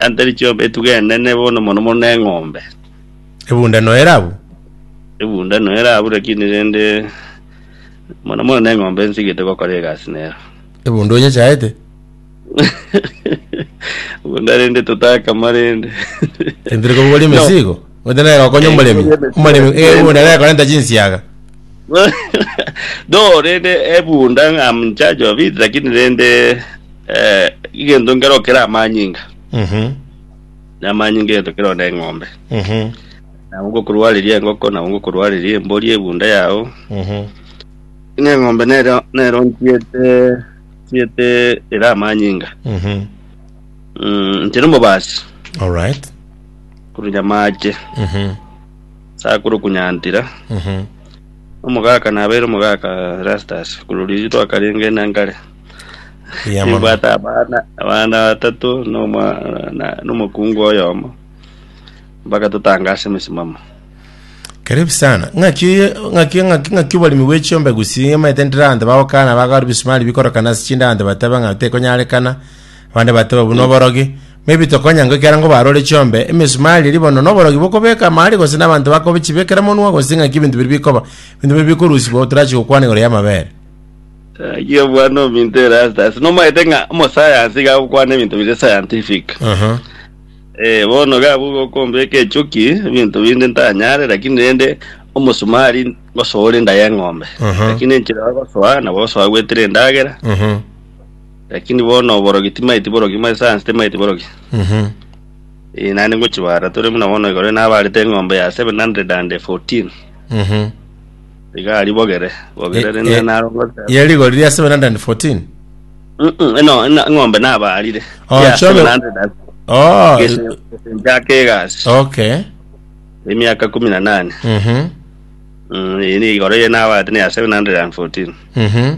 Yantari chiombe etuga enene bono mono mono neng'ombe. Ebunda noera abwo. Ebunda noera abwo lakini rende mono mono neng'ombe nsigete gokora egasi nero. Ebunda onyechaete. Ebunda rende totakama rende. Entire kobugora emesigo. Ote nere okonya omoremi. Omoremi ebunda nere korenta chinsiaga. No, rende ebunda I'm in charge of it lakini rende Eh, egento nkero kera amanyinga Mhm. na amanyinga egento kero na eng'ombe Mhm. nabo ngokorwareria engoko nabo ngokorwareria embori ebunda yao Mhm. na eng'ombe nero nero ntiete tiete era amanyinga Mhm. mm, ntire omobasi All right. kurunya mache Mhm. sakuru kunyantira Mhm. omogaka nabeire omogaka rastas kuroriri twakarenge na nkare Eya mono. Nibwate abana abana batato na omwa- na- na omokungu oyomo mpaka totanga ase emesimamo Karibu sana. Ng'aki oye- ng'aki ng'aki ng'aki oboremi bwe chiombe gusi amaete ndire abanto bagokana bagora bisumari bikorokana ase chinde abanto batebe ng'a tekonyarekana. Abande batebe obwo noborogi. Maybe tokonya ngo ekero ngo barore chiombe emesumari eri bono noborogi bokobeka mahali gose na abanto bakobichibekera monwa gose ng'aki ebinto biri bikoba. Ebinto biri bikorusibwa otorachi gokwana igoro y'amabere. Gaki obwane ominto ere ase ase nomaete ng'a omosayansi iga agokwana ebinto bire scientific Aha. eh bono iga abwo gokombeka echuki ebinto binde ntanyare lakini rende omosumari ngosoore enda y'eng'ombe Aha. lakini enchera ogosoa nabo osoa gwetire endagera Aha. lakini bono oborogi timaeti borogi mare science timaeti borogi Mhm. Eh, naende ngochibara tore buna bono igoro nabarete eng'ombe ya 714 Mhm. Iga aribogere, bogere rende eh, naro ngoteba. Ye rigori ria 714. Mm-mm, eno ena- eng'ombe nabaarire. Oh, Ya chobe- 700 as- Oh, gese- gesenchake egasi. okay. Emiaka kumi na nane. Mhm. Mm, eri igoro ye nabaarire ne ya 714. Mhm.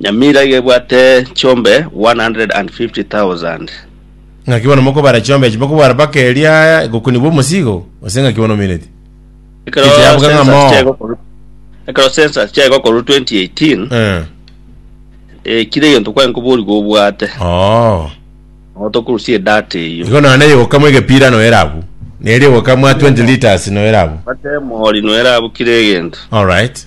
Nyamira iga ebwate chiombe 150,000. Ng'aki bono mokobara chiombe echi? Mokobara mpaka eria egokuni bw'omosigo? Gose ng'aki bono omeneti? Ekero Ekechi yabuga ng'a census moo. chiaigwa korwa ekero census chiaigwa korwa 2018 Eh. eh, kira egento kwaye nkoborigwa obwate Oo. nabo tokorusia edata eyio Igo nonya neyoka mwa egepira noera abwo. Neria eyoka mwa 20 litres noera abwo. Bata emori noera abwo kira egento All right.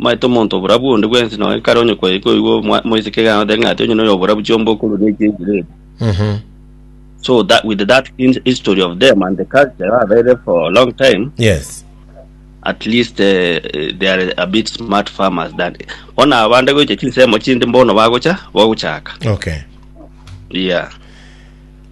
Omanyete omonto oborabu onde bwensi, na onye kare onye kwaye koigwa omwa- omoiseke egaanete ng'a ati onye noyo oborabu chiomba okoruria eki eki rere. Mhm. So that with that in- history of them and the culture babeire for a long time, Yes. at least uh, they are a bit smart farmers than bona abande goicha chinsemo chinde mbono bagocha bagochaka Okay. yeah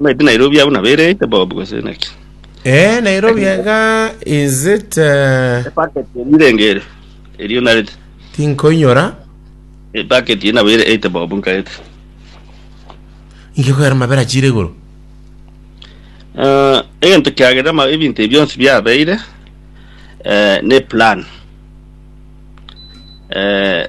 Omanyete Nairobi abuna bereite Bob gose naki? Eh, Nairobi iga is it eh, Epacket eri irenge ere. Erio narete. tinkoinyora Epacket eri nabo ereite Bob nkarete. ingekogera mabera chire igoro Eh, egento kiagera ma ebinto ebi bionsi biabeire eh, ne plan. Eh,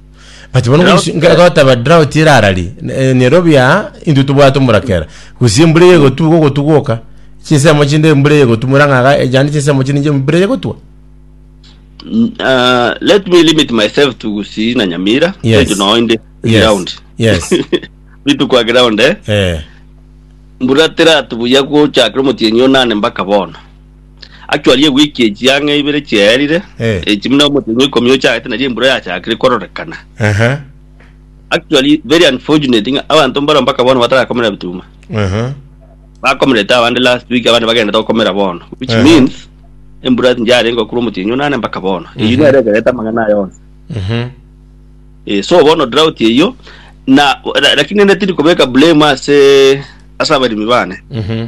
but bono Drought, ngosi- nga- eh. gotaba drought erarari eh, nairobi aa intwe tobwate omorakera gose embura eye egotu gogotu goka chinsemo chinde embura eye egotu morang'aga ejande chinsemo chinde embura eye egotwa Mm, ah, let me limit myself to gusii na nyamira Yes. Thank you, no inde Yes. ground Yes. bitu kwa ground eh eh mbura tiratubuya gochakira omotienyi onane mpaka bono Actually ewiki echiang'a ibere chiaerire Eh. echi buna omotenyi wa ikomi ochagete nari embura yachakire kororekana Aha. actually very unfortunate ng'a abanto mbaro mpaka bono batarakomera bituma Aha. bakomerete abande last week abande bagendete gokomera bono which Ehe. means embura tinjarenge gokura omotienyi onane mpaka bono eyio nere ekerete amang'ana aye onsi Mhm. Eh, so bono drought eyio na ra- lakini ende tindi kobeka blame ase ase abarimi bane Mhm.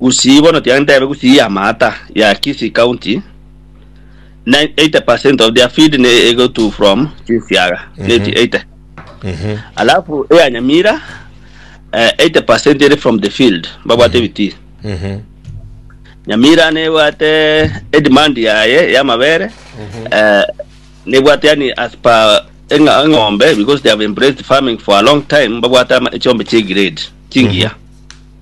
Gusii bono tiga ntebe gusii ya maata ya Kisii county 80 percent of their feed ne ego to from chinsiaga neti 80 alafu eya Nyamira eh, 80 percent eri from the field babwate ebitii Nyamira nebwate edemand yaye yamabere eh, nebwate yani as per eng'a- eng'ombe because they have embraced farming for a long time babwate ama- echiombe chie grade chingiya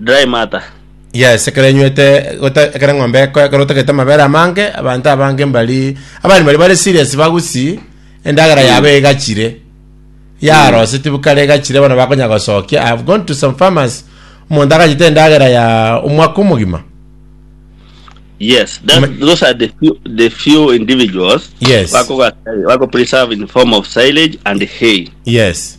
Dry matter. Yes, ekero enywete gota- ekero eng'ombe eko- ekero otagete amabere amange abanto abange mbari abari mbari bare serious bagusii endagera yabo egachire yaroseti bukare egachire bono bakonya gosokia I have gone to some farmers omonto agachete endagera ya omwaka omogima Yes, that, Ma- those are the few, the few individuals Yes. wako, wako preserve in form of silage and hay. yes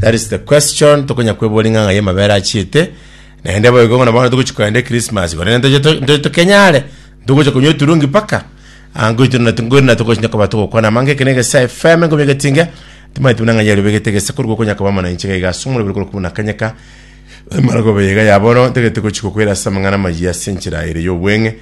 That is the question tokonya kwebora ing'ang'a y'amabere achiete, naende boigo ng'a na bono togochi kogenda ekirismasi korende ntoche to- ntoche tokenyare ntogocha konywa eturungi mpaka ah, ngoito na ngoito na togochinya koba togokwana amange eke na egesa FM engomi egetinge timanye timuna ng'a yari obegete egesa korwa okonya koba mana inche gaiga ase omoroberi korwa kobuna kanyeka emaragoba yaiga ya bono ntagete gochi gokwera ase amang'ana amayia ase enchera ere y'obweng'e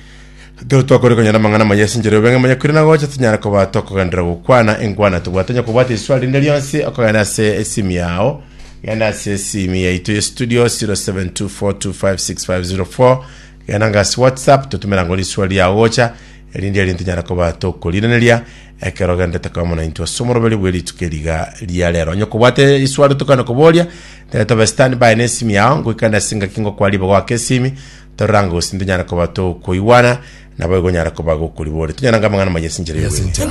Ekero twakore konyora amang'ana amaya ase enchera y'obeng'aini monyakwire na gocha, tonyare koba tokogenderera gokwana enkwana. Tobwate onye kobwata eriswari rinde rionsi okogenda ase esimu yao, genda ase esimu yaito ye studio 0724256504 genda nga ase WhatsApp totumera ngo riswari riao gocha erinde erio ntonyare koba tokoriraneria ekero ogenderete koba mono naintwe ase omoroberi bwe rituko eriga ria rero. Onye kobwate riswari tokane koboria, tebe tobe standby na esimu yao ngoikane ase engaki ngokwa ribogo ake esimi Tororanga gose tintonyara koba tokoigwana, naboigo onyare koba gokoriboria. Tonyora ng'amang'ana maye ase enchera y'obwenerero.